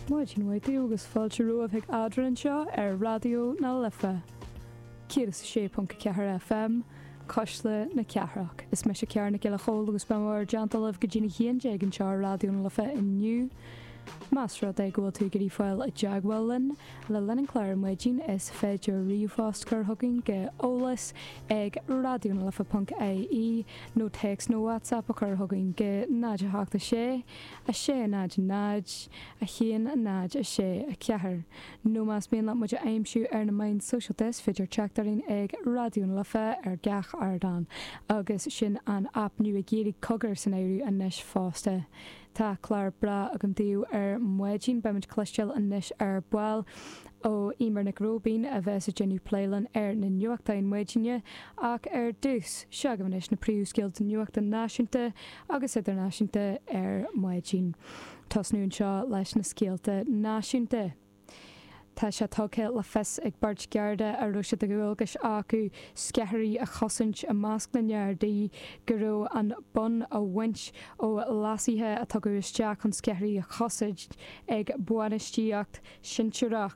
Maidin mhaith daoibh agus fáilte romhaibh chuig Eadrainn anseo ar Raidió na Life 106.4 FM, Cuisle na Cathrach. Is mise Ciara Nic Giolla Chomhaill agus beidh mé in bhur dteannta libh go dtí an haon déag anseo ar Raidió na Life inniu. Más rud é go bhfuil tú ag iarraidh a fháil i dteagmháil linn le linn an chláir ar maidin, is féidir ríomhphost a chur chugainn go eolas ag raidionalife.ie nó téacs nó WhatsApp a chur chugainn go 076 600 10 6 4 nó más mian leat muid a aimsiú ar na meáin shóisialta is féidir teacht orainn ag Raidió na Life ar gach ardán agus sin an aip nua Gaeilge Cogar san áireamh anois fosta. Tá clár breá againn daoibh ar maidin. Beimid cloisteáil anois ar ball ó Eimear Nic Róibín a bheas ag déanamh plé linn ar na nuachtáin maidine, ach ar dtús, seo agaibh anois na príomhscéalta nuachta náisiúnta agus idirnáisiúnta ar maidin. Tosnú anseo leis na scéalta náisiúnta. Tá sé tugtha le fios ag beirt Gharda a raibh sé de dhualgas acu sceithirí a chosaint i measc na nGardaí go raibh an bonn á bhaint ó leasuithe a tugadh isteach chun sceithirí a chosaint ag bainistíocht shinsearach.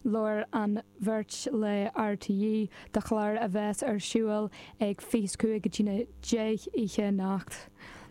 Labhair an bheirt le RTÉ do chlár a bheas ar siúl ag 25 go dtí an 10 oíche anocht.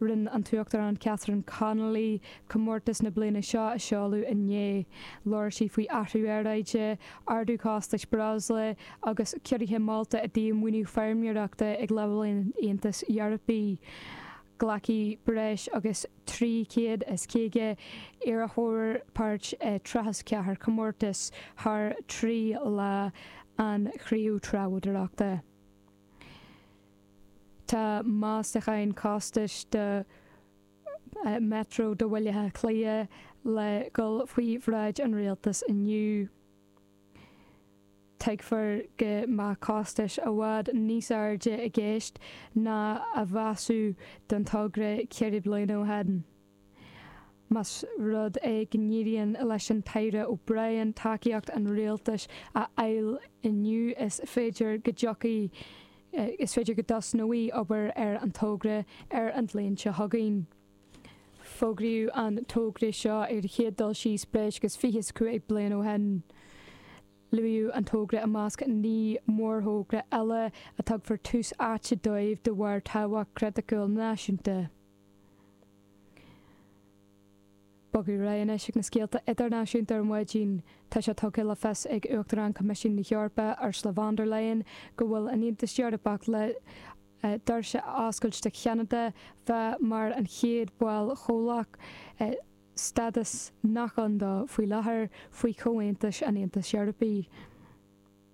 Rinne an tUachtarán Catherine Connolly comórtas na bliana seo a sheoladh inné. Labhair sí faoi athrú aeráide, arduchostais breosla agus ciorruithe molta i dtaobh maoiniú feirmeoireachta ag leibhéal an Aontais Eorpaigh. Glacfaidh breis agus 350 iarrthóir páirt i 34 comórtas thar trí lá an chruinnithe treabhdóireachta. Tá meastacháin costais do Metro do Bhaile Átha Cliath le dhul faoi bhráid an Rialtais inniu. Tuigtear go mbeadh costas i bhfad níos airde i gceist ná a measadh don togra ceithre bliana ó shin. Más rud é go n-éiríonn leis an tAire O'Brien tacaíocht an Rialtais a fháil inniu is féidir go dtosnóidh obair ar an togra ar an bhliain seo chugainn. Fógraíodh an togra seo ar an chéad dul síos breis agus 25 bliain ó shin. Luaíodh an togra i measc naoi mórthogra eile a dtabharfar tús áite dóibh de bharr tábhacht chriticiúil náisiúnta. Bogadh ar aghaidh anois ag na scéalta idirnáisiúnta ar maidin. Tá sé tugtha le fios ag Uachtarán Choimisiún na hEorpa, Ursula von der Leyen, go bhfuil an tAontas Eorpach le doirse a oscailt do Cheanada bheith mar an chéad bhall comhlach, stádas nach ann dó faoi láthair faoi chomhaontuithe an Aontais Eorpaigh.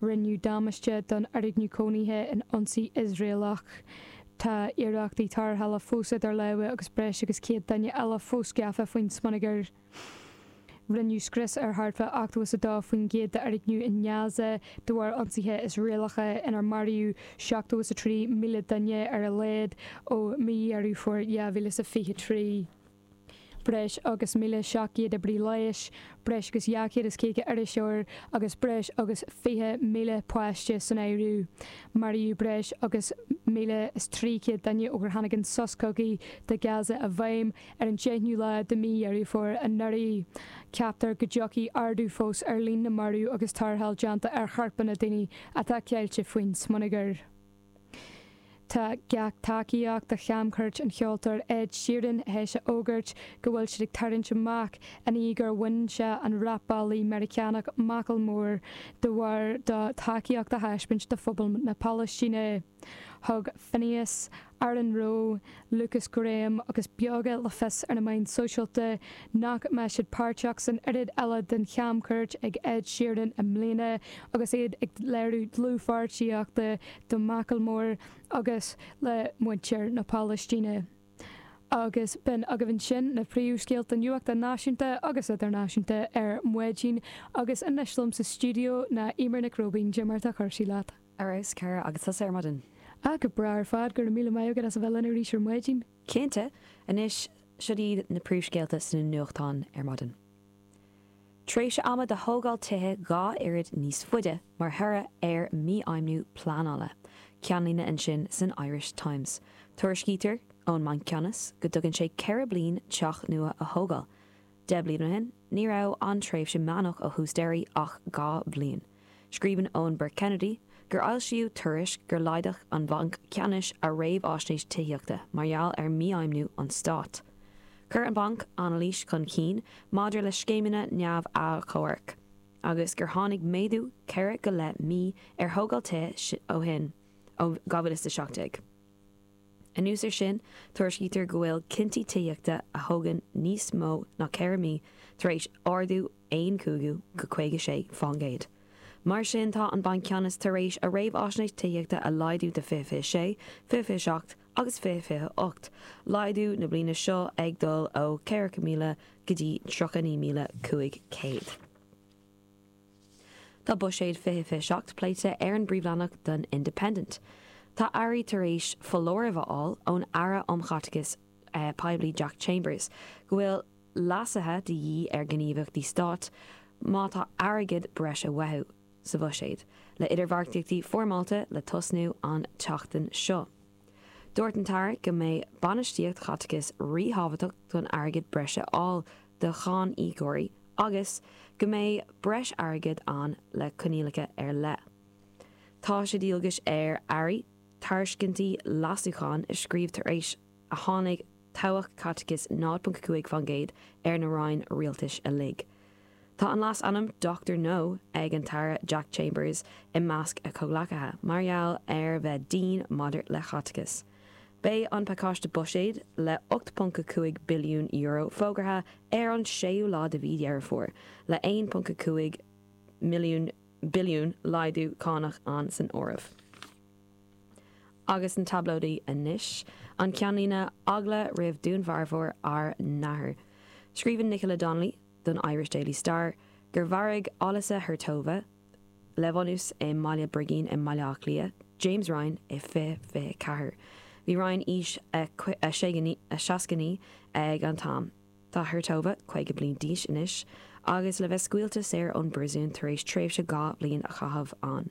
Rinneadh damáiste don fhoirgneamh cónaithe in ionsaí Iosraelach. Tá iarrachtaí tarrthála fós idir lámha agus breis agus 100 duine eile fós gafa faoin smionagar. Rinneadh scrios ar thart fá ochtó is a dó faoin gcéad d'fhoirgnimh in Gaza de bharr ionsaithe Iosraelacha inar maraíodh seachtó is a trí míle duine ar a laghad ó mhí Dheireadh Fómhair 2023. breis agus 1,700 oibrí leighis, breis agus 250 iriseoir agus breis agus 20,000 páiste san áireamh. Maraíodh breis agus 1,300 duine ó gur tháinig an sos cogaidh do Gaza i bhfeidhm ar an deichniú lá de mhí Dheireadh Fómhair anuraidh. Ceaptar go dtiocfaidh ardú fós ar líon na marbh agus tarrtháil déanta ar chorpanna daoine atá ceilte faoin smionagar. Tá gach tac-ghníomh do chamchuairt an cheoltóra Ed Sheeran th'éis a fhógairt go bhfuil siad ag tarraingt amach i ndiaidh gur bhain sé an rapálaí Meiriceánach Macklemore de bharr dó tacaíocht a thaispeáint do phobal na Palaistíne. Thug Finneas Aaron Rowe, Lukas Graham agus Beoga le fios ar na meáin sóisialta nach mbeidh siad páirteach san fhuílleach eile den chamchuairt ag Ed Sheeran i mbliana agus iad ag léiriú dlúthpháirtíochta do Macklemore agus le muintir na Palaistíne. Agus b'in agaibh sin na príomhscéalta nuachta náisiúnta agus idirnáisiúnta ar maidin agus anois liom sa stiúideo ná Eimear Nic Róibín, cad é mar atá cúrsaí leat. Ar fheabhas, Cara, agus tusa ar maidin. Ah, go breá ar fad, go raibh míle maith agat as a bheith linn arís ar maidin. Cinnte, anois, siúd iad na príomhscéalta sna nuachtáin ar maidin. Tréimhse ama do thógáil tithe dhá oiread níos faide mar thoradh ar mhífheidhmiú pleanála, ceannlíne ansin san Irish Times. Tuairiscítear ón mBanc Ceannais go dtógann sé ceithre bliana teach nua a thógáil, Deich mbliain ó shin ní raibh an tréimhse meánach ó thús deireadh ach dhá bhliain. Scríobhann Eoin Burke-Kennedy gur foilsíodh tuairisc gur laghdaigh an Banc Ceannais a réamhfháisnéis tithíochta mar gheall ar mhífheidhmiú an stáit. Chuir an banc anailís chun cinn maidir le scéimeanna neamh-achomhairc agus gur tháinig méadú ceithre go leith mí ar thógáil tithe ó shin ó 2017. Anuas ar sin, tuairiscítear go bhfuil cinntí tithíochta a thógann níos mó ná ceithre mí tar éis ardú aon chúigiú go 56 fán gcéad. Mar sin tá an Banc Ceannais tar éis a réamhfháisnéis tithíochta a laghdú de 2026, 2027 agus 2028, laghdú na bliana seo ag dul ó 40,000 go dtí 39,500. Tá buiséad 2027 pléite ar an bpríomhleathanach don Independent. Tá airí tar éis foláireamh a fháil ón Aire um Chaiteachas Poiblí Jack Chambers go bhfuil leasuithe de dhíth ar ghníomhaíochtaí stáit má tá airgead breis á mbeartú sa bhuiséad le idirbheartaíochtaí foirmeálta le tosnú an tseachtain seo. Dúirt an tAire go mbeidh bainistíocht chaiteachais ríthábhachtach chun airgead breise a fháil do cháiníocóirí agus go mbeidh breis airgid ann le coinníollacha ar leith. Tá sé de dhualgas ar Airí tairiscintí leasúcháin a scríobh tar éis a tháinig tobhach caiteachais 0.5% ar na Roinn Rialtais uilig. Tá an leasainm Doctor No ag an tAire Jack Chambers i measc a chomhghleacaithe mar gheall ar bheith dian maidir le caiteachas. Beidh an pacáiste buiséid le €8.5 billiún fógartha ar an séú lá de mhí Dheireadh Fómhair, le €1.5 milliún billiún laghdú cánach ann san áireamh. Agus sna tablóidí anois an ceannlíne, Eagla roimh dúnmharfóir ár n-athair. Scríobhann Nicola Donnelly. don Irish Daily Star gur mharaigh Olesya Hertova, le bunús i mBaile Brigín i mBaile Átha Cliath, James Ryan i 2024. Bhí Ryan aois a 69 ag an t-am. Tá Hertova 50 bliain d'aois anois agus le bheith scaoilte saor ón bpríosún tar éis tréimhse dhá bhliain a chaitheamh ann.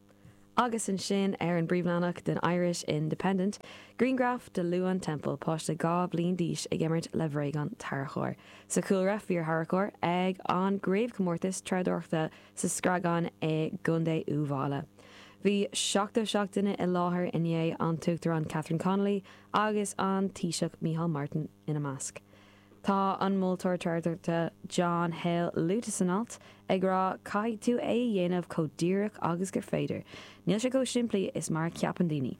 Agus ansin ar an bpríomhleathanach den Irish Independent, grianghraf de Luan Temple, páiste dhá bhliain d'aois ag imirt le bhréagán tarracóir. Sa chúlra, fíortharracóir ag an gcraobhchomórtas treabhdóireachta sa Screagán i gContae Uíbh Fháile. Bhí seachtó seacht duine i láthair inné, an tUachtarán Catherine Connolly agus an Taoiseach Micheál Martin ina measc. Tá an moltóir treabhdóireachta John Hale luaite san alt, ag rá caithfidh tú é a dhéanamh chomh díreach agus gur féidir. Níl sé chomh simplí is mar a cheapann daoine.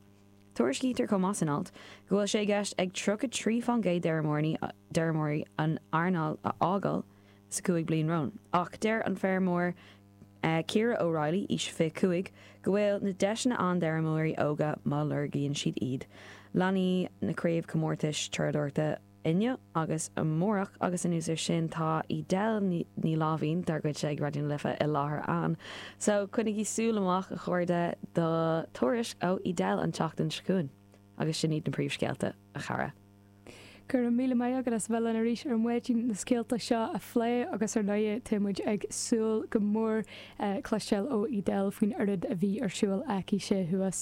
Tuairiscítear chomh maith san alt go bhfuil sé i gceist ag 33 fán gcéad d'fheirmeoirí an earnáil a fhágáil sa chúig bliain romhainn, ach deir an feirmeoir Ciara O'Reilly, aois 25, go bhfuil na deiseanna ann d'fheirmeoirí óga má lorgaíonn siad iad, leanfaidh na craobhchomórtais treabhdóireachta inniu agus amárach agus anuas ar sin tá Edel Ní Láimhín dár gcuidse ag Raidió na Life i láthair ann so coinnígí súil amach a chairde do thuairisc ó Edel an tseachtain seo chugainn agus sin iad na príomhscéalta a chara. Go raibh míle maith agat as bheith linn arís ar maidin leis na scéalta seo a phlé agus ar ndóigh táimid ag súil go mór cloisteáil ó Edel faoin oiread a bhí ar siúl aici sé thuas